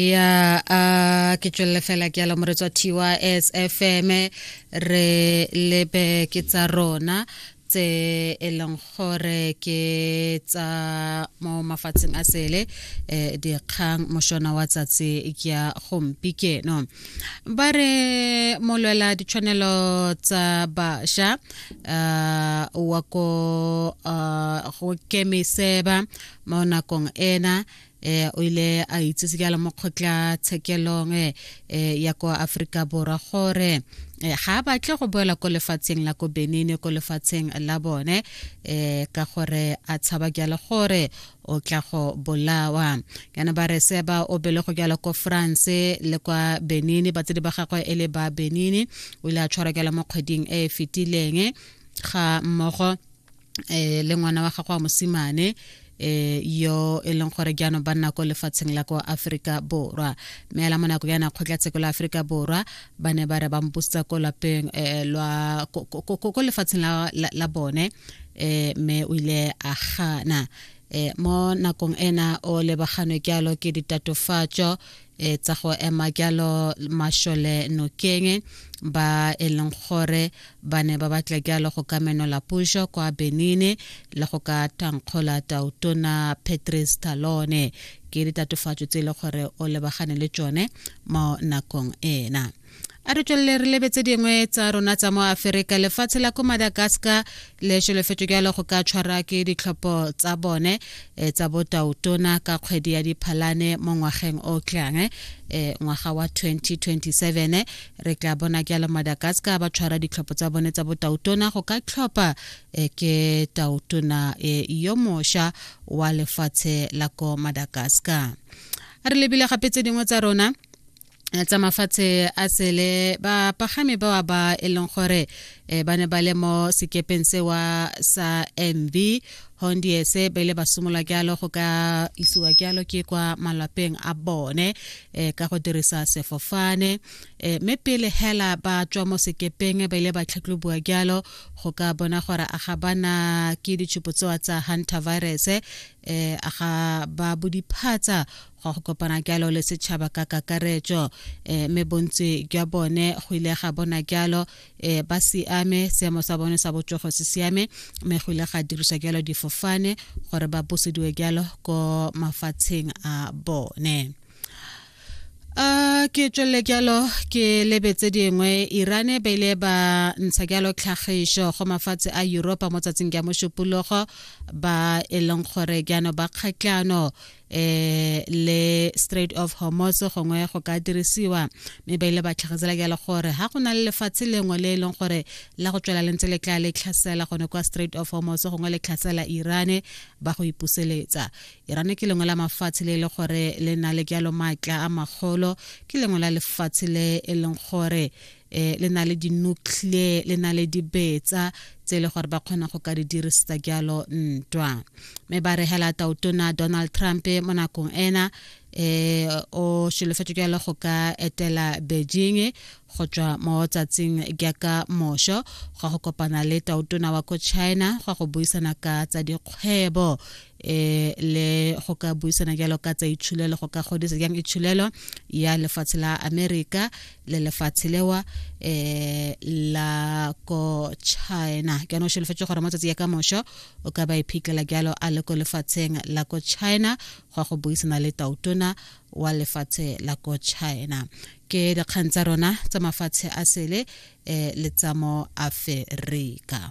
ya a ke tswelele fela ke ala moretso wa tys fm re lebe ke tsa rona tse e leng gore ke tsa mo mafatsheng a sele um dikgang moshona wa tsatsi ya gompi keno ba re molwela ditshwanelo tsa bašwa um wa ko um go kemiseba mo nakong ena eh o ile a itsese jalo mo kgotla tshekelong eh, eh ya kwa Afrika Borwa gore eh, ga a batle go boela ko lefatsheng la ko Benin ko lefatsheng la bone eh ka gore a tshaba jalo gore o tla go bolawa kana ba re se ba o bele go jalo ko France le kwa Benin ba tse di ba gagwe e le ba Benin o ile a tshwara jalo mo kgweding e e fetileng ga mmogo eh le ngwana wa gago wa mosimane eh yo e leng gore jaanong ba nna ko lefatsheng la kwa aforika borwa mme ela mo nako yana kgotlatsheko la aforika borwa ba ne ba re ba mposetsa ko lapeng eh, lwa ko lefatsheng la, la, la bone eh mme o ile a gana eh mo nakong ena o lebaganwe kyalo ke ditatofatso e tsa go ema jalo mašole nokeng ba e leng gore ba ne ba batla jalo go ka menola puso kwa benine le go ka thankgola tautona patrice talone ke ditatofatso tse e le gore o lebagane le tsone mo nakong ena a re tswelele re lebetse dingwe tsa rona tsa mo aferika lefatshe la ko madagascar le šelefetso jalo go ka tshwara ke ditlhopho tsa bone e, tsa botautona ka kgwedi ya diphalane mo ngwageng o tlang e, eh, ngwaga wa 2027 eh, re tla bona jalo madagascar ba tshwara ditlhopho tsa bone tsa botautona go ka tlhopha eh, ke tautona eh, yo mosha wa lefatshe la ko madagascar re lebile gape tse dingwe tsa rona Eh, tsa mafatshe a sele bapagami ba ba e leng gore um ba ne ba le mo sekepeng sewa sa mv hondiese ba ile ba simolola jalo go ka isiwa jalo ke kwa malapeng a bone um ka go dirisa sefofane um mme pele hela ba tswa mo sekepeng ba ile ba tlhatlhoboa jalo go ka bona gore a ga bana ke ditshupo tsewa tsa hunter virus um a ga ba bodiphatsa gwa go kopana kyalo le setšhaba ka kakaretšo um eh, me bontsi jwa bone go ile ga bona kyalo um eh, ba siame seemo sa bone sa botsogo se siame me go ile ga dirisa kyalo difofane gore ba busediwe kyalo ko mafatsheng a bone a ke tswelele jalo ke lebetse dingwe irane ba ile ba ntsha jalo tlhagiso go mafatshe a europa mo tsatsing ya mošupologo ba e leng gore jaanong ba kgatlano eh le Strait of Hormuz gongwe go ka dirisiwa mme ba ile ba tlhagetsela ke le gore ha go na le lefatshe lengwe le e leng gore la go tswela lentse le tla le tlhasela gone kwa Strait of Hormuz gongwe le tlhasela Iran ba go ipuseletsa Iran ke lengwe la mafatshe le e le gore le na le jalo maatla a magolo ke lengwe la lefatshe le e leng gore eh le na le di-nuclear le na le dibetsa tse e le gore ba kgona go ka di dirisetsa jalo ntwa mme ba re hela tautona donald trump mo nakong ena eh o solofetse jalo go ka etela beijing go tswa mo tsatsing jaaka mosho go go kopana le tautona wa ko china go go buisana ka tsa dikgwebo eh le go ka buisana jalo ka tsa itshulelo go ka godisa jang itshulelo ya lefatshe la america le lefatshe lewa eh la ko china ke no shelefetse gore matsatsi ya ka mosho o ka ba iphitlhela jalo a le ko lefatsheng la ko china go go buisana le tautona wa lefatshe la ko china ke dikgang tsa rona tsa mafatshe a sele eh le tsamo aferika